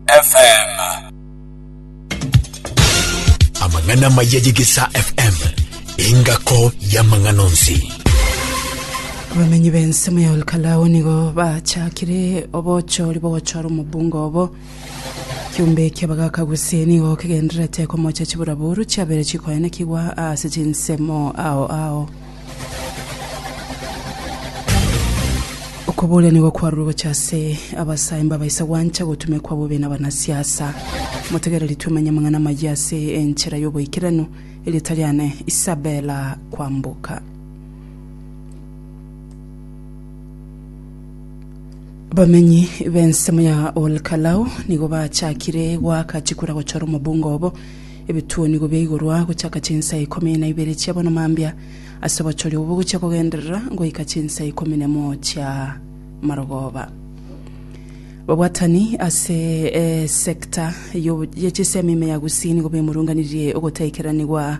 FM. Amang'ana maya y'Egesaa FM, engako y'amang'ana onsi. abamenyi b'ensemo ya olkalao nigo bachakire obochori bogochora omobunga obo kiumbe kiabagaka gose nigo kigendererete komocha chiburaboru chiabere chikoenekigwa ase chinsemo ao ao Okobooria nigo kwarure gocha ase abasae mbabaisa gwancha gotumekwa bobe nabanasiasa. Motegereri twemanye amang'ana amayia ase enchera y'oboikeranu. Erieta riane Isabella Kwamboka. Abamenyi b'ensemo ya Olkalau nigo bachakire goaka chikura gochora omobunga obo Ebituonigo bia igorwa gochaka chinsa ikomi na ibere chia bonoma mbia ase obochoria obo bogochia kogenderera goika chinsa ikomi na emo chia marogoba. Babwatani ase esecta ya chisemi ime ya Gusii nigo bemurunganirie ogotaikeraniwa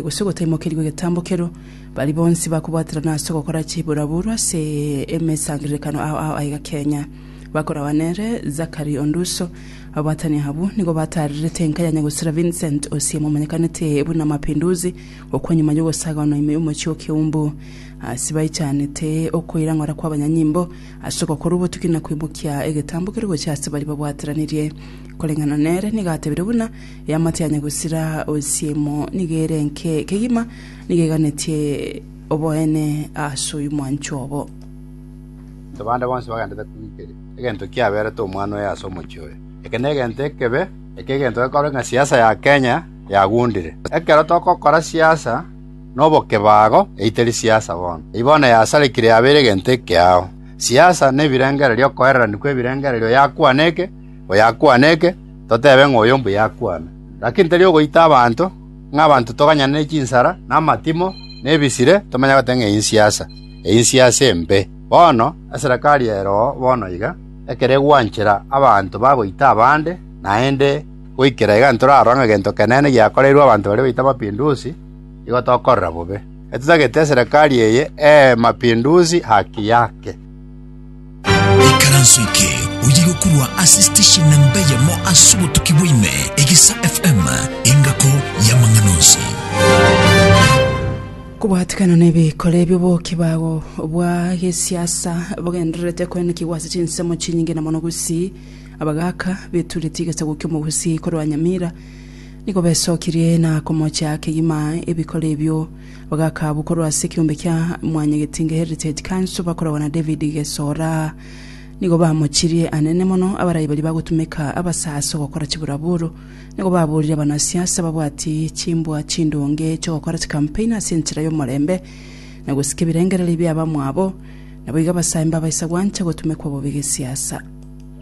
gose ogotaimokerigwa egetambo kero. Baria bonsi bakobwaterana ase ogokora chiburaburu ase emesangererekano ao ao aiga Kenya. Bakoragwa nere Zachary Onduso. Abaatani abwo nigo bataarerete enka ya Nyagosera Vincent Osiem omanyekanete buna Mapinduzi okwo nyuma y'ogosagaanwa ime y'omochie o Kiumbu. Ase baichanete okoirang'ora kw'abanyanyimbo ase ogokora obotuki na koimokia egetambo kere gochia ase baria babwateranirie. Koreng'ana nere nigo atebire buna eamate ya Nyagosera Osiem nigo ere enke kegima nigo eganetie oboene ase oyio mwancho obo. Baminto bande bonsi bagendete kwigeri. Egento kiaberete omwana oyo ase omochie oyo. Eke negento ekebe, eke egento gekororeka ng'a siasa ya Kenya yagundire. Ekero togokora siasa na obokebago eyio teri siasa bono. Eyio bono yasarekire yabeire egento ekeao. Siasa nebirengererio okoereranio kwebirengererio oyakwana eke, oyakwana eke, totebe ng'a oyo mbuya akwana. Lakini teri ogoita abanto, ng'a abanto toganyane ne chinsara, na amatimo, na ebisire, tomanye goteba ng'a eyio nsiasa. einse ase embe. Bono eserekari ero bono iga, ekero egwanchera abanto bagoita abande, naende goikera iga ntorarora ng'a egento kenene giakoreirwe abanto baria baito amapindusi, igo tokorora bobe. Etitagete eserekari eye ee mapindusi haki yake. Ikaranso eke oye gokurwa ase station namba eyemo ase obotuki bwaime, Egesa FM, engako y'amang'ana onsi. Kobwatikana nebikore by'oboki bao bwa gesiasa bogendererete koenekigwa ase chinsemo chinyinge na mono Gusii. Abagaka beturetie egesaku ki'omogusii korwa Nyamira nigo besokirie na komochia kegima ebikore ebio. Bagaka abwo korwa ase ekeombe kia Mwanyagetinge Heritage Council bakoragwa na David Gesora. Nigo bamochirie anene mono abarai baria bagotumeka abasaso gokora chiburaburu. Nigo baborire abanasiasa babwati chimbwa chindonge chiogokora chikampeni ase enchera y'omorembe na gosika ebirengererio bia abamwabo. Naboigo abasaimba baisa gwancha gotumekwa bobe gesiasa.